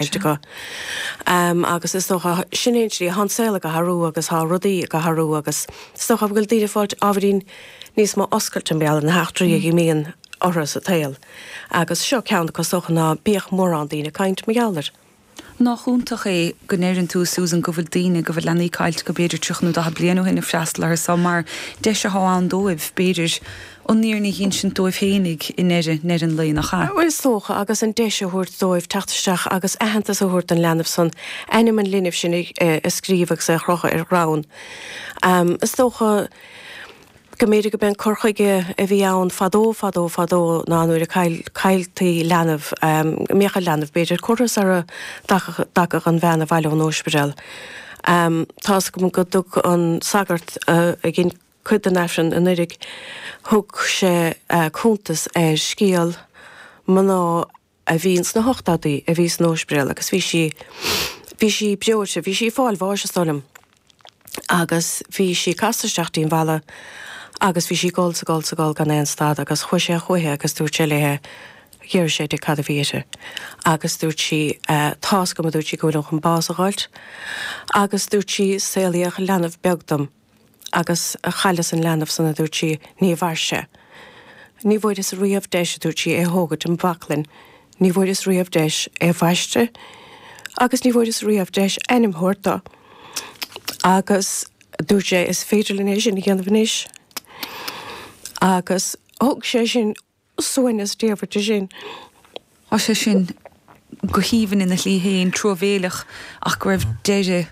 Sure. acu. Agus is dócha, sin é an tslí athá an saol ag athrú agus athá rudaí ag athrú agus is dócha go bhfuil daoine ag fáilt ábhairín níos mó oscailte mar gheall ar na heachtraí a imíonn orthu sa tsaol. Agus seo ceann acu is dócha ná bíodh mórán daoine ag caint mar gheall air. Nách iontach é go ndeireann tú, Susan, go bhfuil daoine, go bhfuil leanaí caillte acu b'fhéidir tríocha nó daichead bliain ó shin ag freastal orthu so mar deis athá ann dóibh b'fhéidir an fhírinne a dh'ínsint dóibh féinig i ndeireadh an lae nach eadh. Is dócha, agus an deis a thabhairt dóibh teacht isteach agus aitheantas a thabhairt don leanbh san, ainm an linbh sin a scríobh agus é a chrochadh ar chrann. Is dócha go mb'fhéidir go b'é an cur chuige a bhí ann fadó fadó fadó ná nuair a cailltí leanbh, go mbeadh an leanbh, b'fhéidir, curtha sara dtagadh an bhean abhaile ón óispidéal. Tá's agam go dtug an sagart a dhein. cuid den Aifreann anuiridh. Thug sé cuntas ar scéal mná a bhí ins na hochtáidí a bhí san óspaidéal agus bhí sí, bhí sí breoidhte, bhí sí ag fáil bháis is dóigh liom agus bhí sí casta isteach dtí'n bhfalla agus bhí sí ag gol 's ag gol 's ag gol gan aon stad agus chuaidh sé chúiche agus dúirt sé léithe, d'iarr sé di cad a bhí uirthi agus dúirt sí tá 's agam a dúirt sí go bhfuilim chun bás a dh'fháilt agus dúirt sí saolaíodh leanbh beag dom. agus chailleas an leanbh san, a dúirt sí, ní mhair sé. Ní bhfuaireas riamh deis, a dúirt sí, é thógaint im bhaclainn, ní bhfuaireas riamh deis é a bhaisteadh agus ní bhfuaireas riamh deis ainm thabhairt do. Agus dúirt sé, is féidir linn é sin a dhéanamh anois. Agus thug sé sin. Suaimhneas diamhair di sin. Tá sé sin go haoibhinn ina shlí féin, truamhéileach ach go raibh deireadh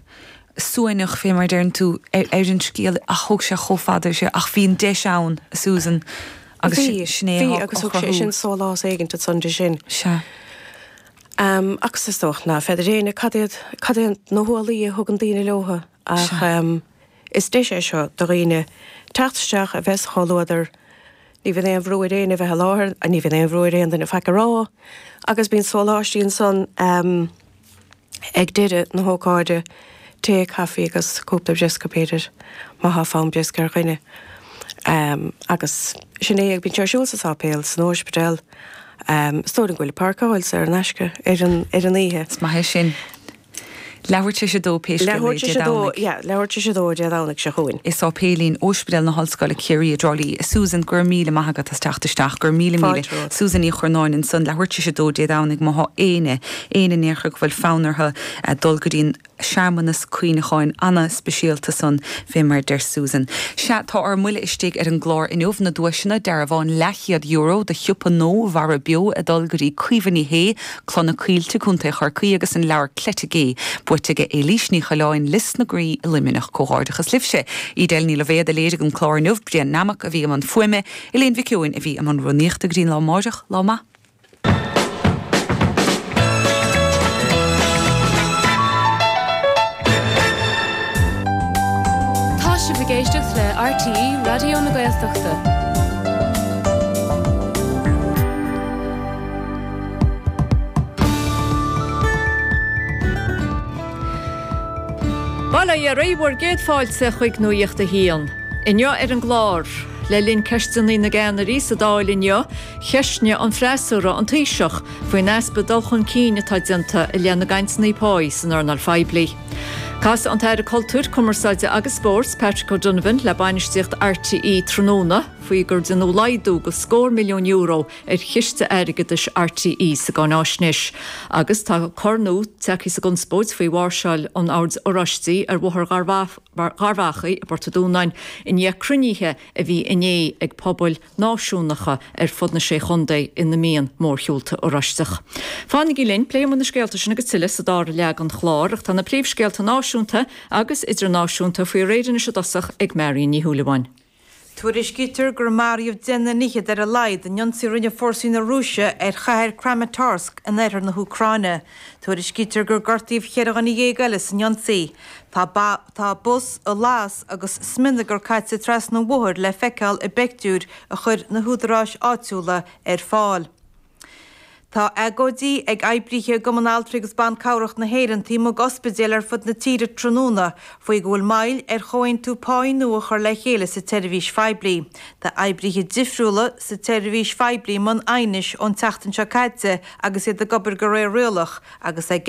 suaimhneach, fé mar a deireann tú, ar an scéal ach thóg sé chomh fada ar sé. Ach bhí an deis ann, a Susan, agus sin é a chruthú. Bhí, bhí agus thug sé sin sólás éigint ansan di sin. Sea. Agus is dócha ná feadair éinne cad iad, cad iad na hualaí a thugann daoine leobhtha ach. Is deis é seo do dhaoine teacht isteach, a bheith sa chomhluadar. Ní bhíonn aon bhrú ar éinne a bheith i láthair, ní bhíonn aon bhrú ar aon duine faic a rá agus bíonn sóláistí ansan ag deireadh na hócáide, tae, caifí agus cúpla briosca, b'fhéidir, má thá fonn briosca ar dhuine. Agus sin é, bíonn sé ar siúl sa Sáipéal, san Óispidéal, is dóigh liom go bhfuil páirceáil saor in aisce ar an oíche. Is maith é sin. Leathuair tar éis a dó pé scéal é, Dé Domhnaigh. Leathuair tar éis a dó Dé Domhnaigh seo chugainn. I sáipéilín Óispidéal na hOllscoile, Ciarraí, i dTrá Lí. A Susan, go raibh míle maith agat as teacht isteach. Go raibh míle míle. Fáilte romhat. Susan Ní Churnáin ansan. Leathuair tar éis a dó Dé Domhnaigh má thá éinne, éinne in aon chor go bhfuil fonn orthu dul go dtí an searmanas cuimhneacháin ana-speisialta san fé mar a deir Susan. Sea, tá ár mbuile istigh ar an gclár inniu. Na duaiseanna, dearbhán leathchéad euro do shiopa nua Mhara Beo ag dul go dtí Caoimhe Ní Shé, Cloich na Coillte, Co. Chorcaí, agus an leabhar Cleite Gé buaite ag Éilís Ní Choileáin, Lios na Graí i Luimneach. Comhghairdeachas libhse! Edel Ní Loibhéad a léirigh an clár inniu, Brian Nammock a bhí i mbun fuaime, Elaine Mhic Eoin a bhí i mbun Rúnaíochta. Go dtí an lá amáireach, lá maith. Tá sibh ag éisteacht le RTÉ Raidió na Gaeltachta. Bail ó Dhia oraibh, bhur gcéad fáilte chuig Nuacht a hAon. Inniu ar an gclár, le linn Ceisteanna na gCeannairí sa Dáil inniu, ceistneoidh an freasúra an Taoiseach faoin easpa dul chun cinn atá déanta i leith na gcainteanna páí san earnáil phoiblí. Casfaidh an tAire Cultúir, Cumarsáide agus Spóirt, Patrick O'Donovan le bainistíocht RTÉ tráthnóna faoi gur deineadh laghdú de scór milliún euro ar Chiste Airgeadais R.T.E. sa gCáináisnéis agus tá cor nua tagtha sa gconspóid faoi mháirseáil an Oird Oráistigh ar Bhóthar Gharbh Achaidh i bPort a' Dúnáin i ndiaidh cruinnithe a bhí inné ag pobail náisiúnacha ar fud na Sé Chontae ina mbíonn mórshiúlta Oráisteach. Fanaigí linn, pléifidh muid na scéalta sin agus tuilleadh sa dara leath den chlár ach tá na príomhscéalta náisiúnta agus idirnáisiúnta faoi réir anois i dtosach ag Marion Ní Shúilleabháin. Tuairiscítear gur maraíodh duine is fiche ar a laghad in ionsaí a rinne fórsaí na Rúise ar chathair Kramatorsk in oirthear na hÚcráine. Tuairiscítear gur gortaíodh cheithre dhuine dhéag eile san ionsaí. Tá ba, tá bus ar lasadh agus smionagar caite trasna an bhóthair le feiceáil i bpictiúir a chuir na húdaráis áitiúla ar fáil. Tá agóidí ag oibrithe Chumann Altraí agus Ban Cabhrach na hÉireann taobh amuigh d'ospidéil ar fud na tíre tráthnóna faoi go bhfuil moill ar chomhaontú páí nua a chur le chéile sa tseirbhís phoiblí. Tá oibrithe difriúla sa tseirbhís phoiblí i mbun aighnis ón tseachtain seo caite agus iad ag obair go réir rialach agus ag